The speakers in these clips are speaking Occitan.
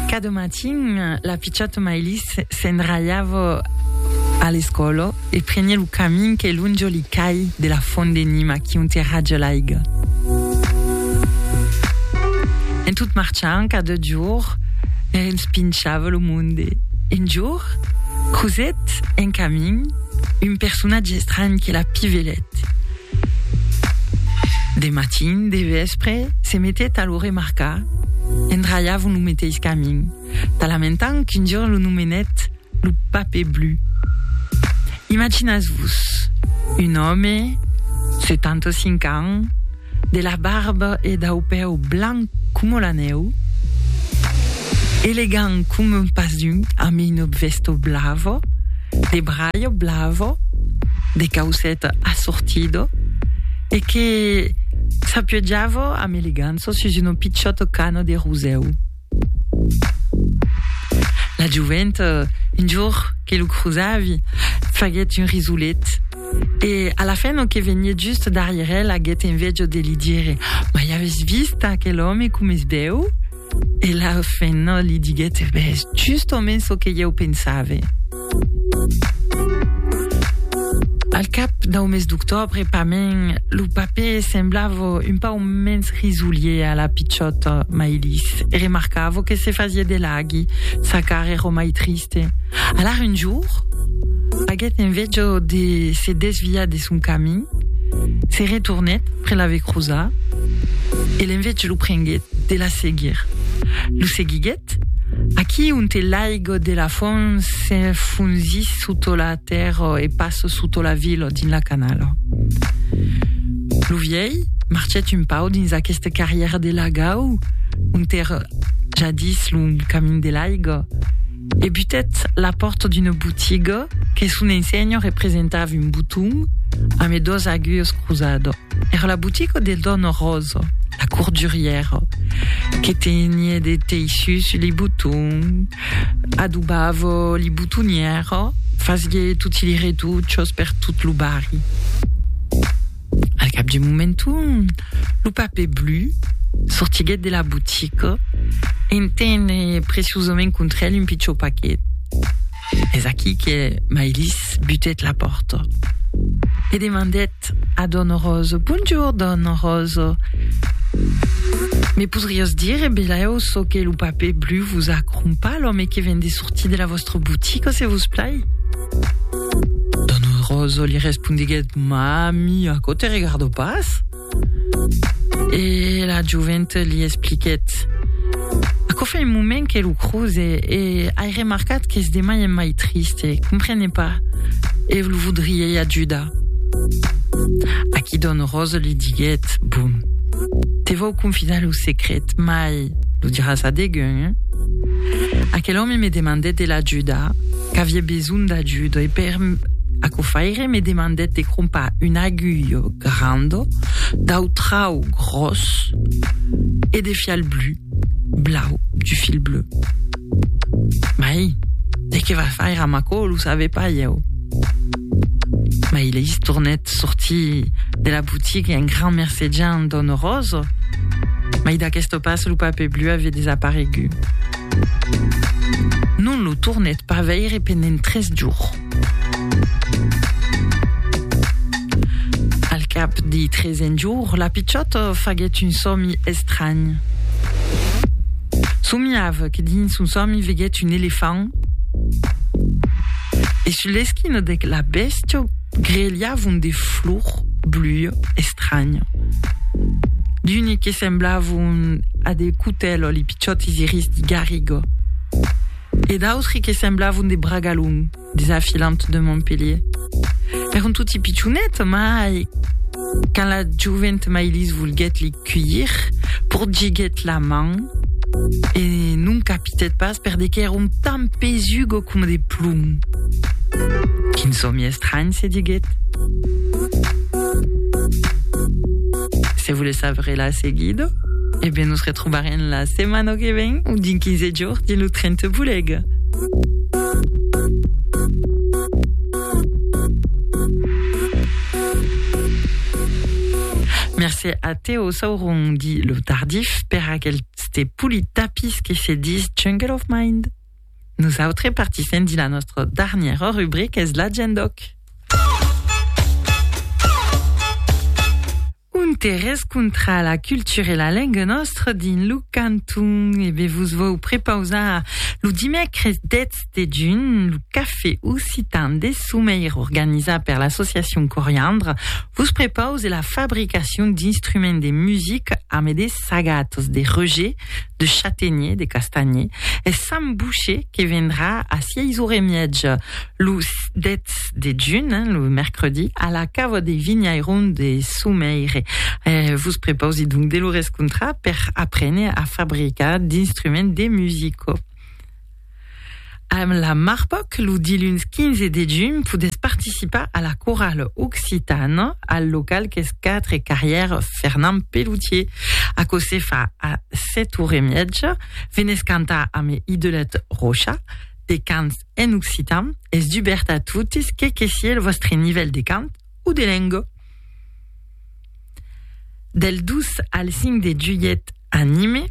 Cada matin, la pichòta Maylis se'n ralhava a l'escòla e preniá lo camin que lonja li cai de la fònt de Nima qui onte raja l'aiga. En tot marchant, cada jorn, li respinchava lo monde. Un jorn, crosèt en camin un personatge estranh que la pivelèt. De matin, de vèspre, se metèt a lo remarcar, endralhavon lo meteis camin, talamentant qu'un jorn lo nomenèt lo Pape Blu. Imaginatz-vos, un òme, 75 ans, de la barba e dau pèu blanc coma la nèu, elegant coma un pas d'un, amb una vèsta blava, de braio blavo, de caucèt assortido, e que s'apiojava amb elegança sus una pichòta cana de rosèu. La jovent, un jorn que lo crosavi, faguèt un risolet, e a la fin lo que venièt just darrièr el aguèt enveja de li dire, Mai aves vist aquel òme com es bèu? E la fenna li diguèt, E ben, es justament çò que ieu pensave. Al cap dau mes d'octòbre, pament, lo papè semblava un pauc mens risolier a la pichòta Maïlis e remarcava que se fasiá de laghi, sa cara èra mai triste. Alara un jorn, aguèt enveja de se desviar de sa. seguiguèt son camin, se retornèt près la vecrosa e l'enveig lo prenguèt de la seguir. Lo seguiguèt aquí onte l'aigo de la font s'enfonzís soto la tèrra e pas soto la vila dins la canala. Lo vièlh marchèt un pau dins aquesta carrièra de lagau onte èra jadís lo camin de l'aiga, E butèt la pòrta d'una botiga que son ensenha representava un boton amé dos aguilhas crosada. Era la botiga de dòna Rosa, la cordurièra, que tenie de teissus li botons, adobava li botonièra, fasie toti li retuchas per tot lo barri. Al cap d'un moment, lo papè blu sortiguèt de la botica e entene preciosament contra el un pichon paquet. Es aquí que Mailis butèt la pòrta e demandèt a dòna Rosa, Bonjour, dòna Rosa, me podriás dire, belèu, çò que lo papè blu vos a crompar l'òme que ven de sortir de la vòstra botica, se vos plai? Roso li respondiguèt, Mami, aquò te regardo pas? E la joventa li expliquèt, Aquò fa un moment que lo croze e ai remarcat qu'es de mai en mai triste, comprene pas, e lo vodriei ajudar. Aquí Don Roso li diguèt, Bon, te vau confidar lo secret, mai lo diràs a degun, hein? Aquel òme me demandèt de l'ajudar, Qu'avie besonh d'ajudo, e per aquò faire me demandèt de crompar un aguilh grand dau trau gròs e de fiar el blu, blau, du fil bleu. Mai, de qué va faire amb aquò, lo save pas ieu. Mai leis tornèt sortir de la boutique un grand mercejant d'ònor ròsa, mai d'aqueste pas lo papè blu avie desaparegut. Non lo tornèt pas veire pendent tres jorns. Al cap dei tresen jorn, la pichòta faguèt un sòmi estranh. Somiava que dins son sòmi veguèt un elefant e sus l'esquina de la bèstia grelhavon de flor blue estranya. D'uni que semblavon a de cotèl o li pichòtis iris de garriga. E d'autri que semblavon de bragalon des afilants de Montpellier. Èron toti pichonets, mai quand la jovent Mailise volguèt li cuir, porgiguèt la man e non capitèt pas perde qu'èron tan pesugo coma de plom. Quin sòmi estranh, se diguèt. Se volètz saber la seguida, e ben nos retrobarem la setmana que ven o dins 15 jorns dins lo tren te bolega. Mercé a Teo Sauron dit le tardif per aquel ste pouli tapis que se dis Jungle of Mind. Nous autres partissem dit la nostra dernière rubrique es la gendoc. Un terrés contra la cultura e la lenga nòstra dins lo canton. E be vos vòu prepausar lo dimècres 10 de junh lo café occitan de Someir organizat per l'associacion Coriandre vos prepause la fabricacion d'instruments de musica amé de sagatas de Roger, de Chatenier, de Castanhier e Sam Boucher que vendrà a 6 ora e miètja lo 10 28 de juny, hein, lo mercredi, a la cava de Vinhairon de Soumeire. Eh, vos preposi donc de lo rescontrar per aprene a fabricar d'instruments de musico. Amb la Marpoc, lo diluns 15 de juny, podes participar a la corale occitana al local qu'es 4 carrière Fernand Pelloutier. A se fa a 7 hores e miètja, venes cantar amb Idelette Rocha, de cants en occitan es dubèrt a totes que que sié lo vòstre nivèl de cant o de lenga. Del 2 al 5 de julhet a Nime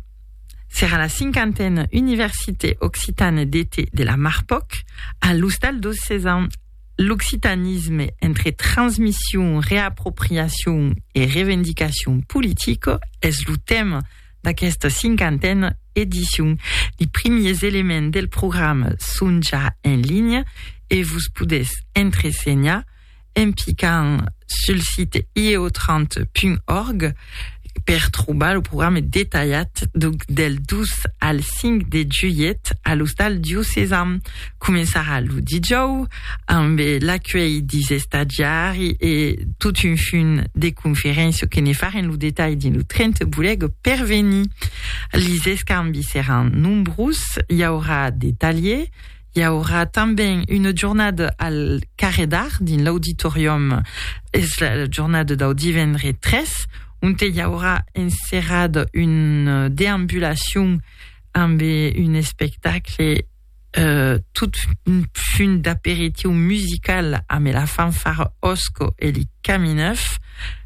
serà la cinquantena Université Occitane d'Été de la Marpoc a l'Ostal dos Sesam, l'occitanisme entre transmission, reapropriation e revendicacion politica es lo tèma d'aquesta cinquantena edicion. Li primiers elements del programa son ja en linha e vos podètz entresenhar en picant sul site ieotrant.org per trobar lo programa detalhat del 2 al 5 de julhet a l'Ostal Diocesan. Començarà lo dijòu ambe l'acuelh dis estadiari e tot un funt de conferéncia que ne farem lo detalh dins lo 30 Boleg per venir. Lis escambis seràn nombrós, i aurà de talhier, i aurà tanben una jornada al Carrè d'Art dins l'auditorium, es la jornada dau divendre 3, onte i aurà enserrada una deambulacion ambe un espectacle, tot un punt d'aperitiu musical amb la fanfara Osco e li Camineuf.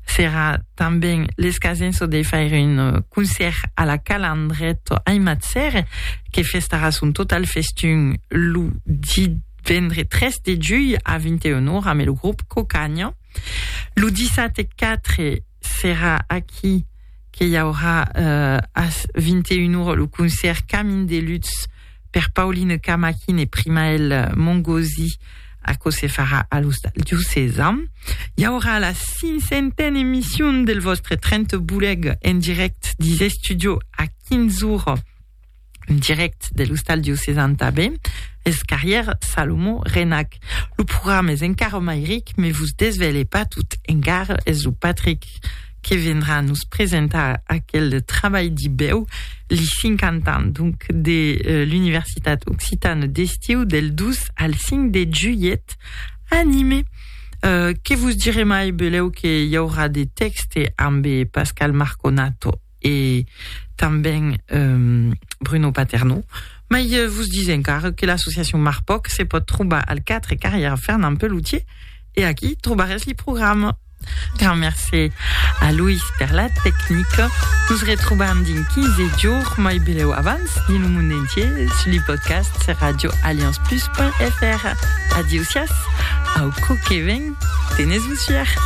Serà tanben l'escasenço de faire un concèrt a la Calandret aimat cère que festarà son total festun lo divendre 3 de julh a 21 ora amb lo grop Cocaña. Lo dissabte 4 serà aquí que i aurà uh, a 21 ora lo concèrt Camin de Lutz per Pauline Camaquin e Primael Mongosi Aquò se farà a l'Hostal Diocesa. Hi haurà la cinquantena emissió del vostre 30 boleg en direct des estudios a 15 hores un direct de l'ostal diocesan tanben, es Carrière Salomon Renac. Lo programa es encara mai ric, me vos desvèle pas tot encara, es lo Patrick que vendrà nos presentar aquel trabalh dibèu, li 50 ans donc de l'Universitat Occitane d'Estiu del 2 al 5 de julhet a Nîmes. Que vos dire mai, belèu que i aurà de tèxte ambe Pascal Marconato. e tanben Bruno Paternò, mai vos dis encara que l'associacion Marpoc se pòt trobar al 4 carrièra Fernand Pelloutier e aquí trobarètz li programa. Grand mercé a Loïs per la tecnica. Nos retrobam dins 15 jorns, mai belèu abans, dins lo mond entier sus li podcasts radioallianceplus.fr. Adieu siás! Au còp que ven, tenes-vos fièr!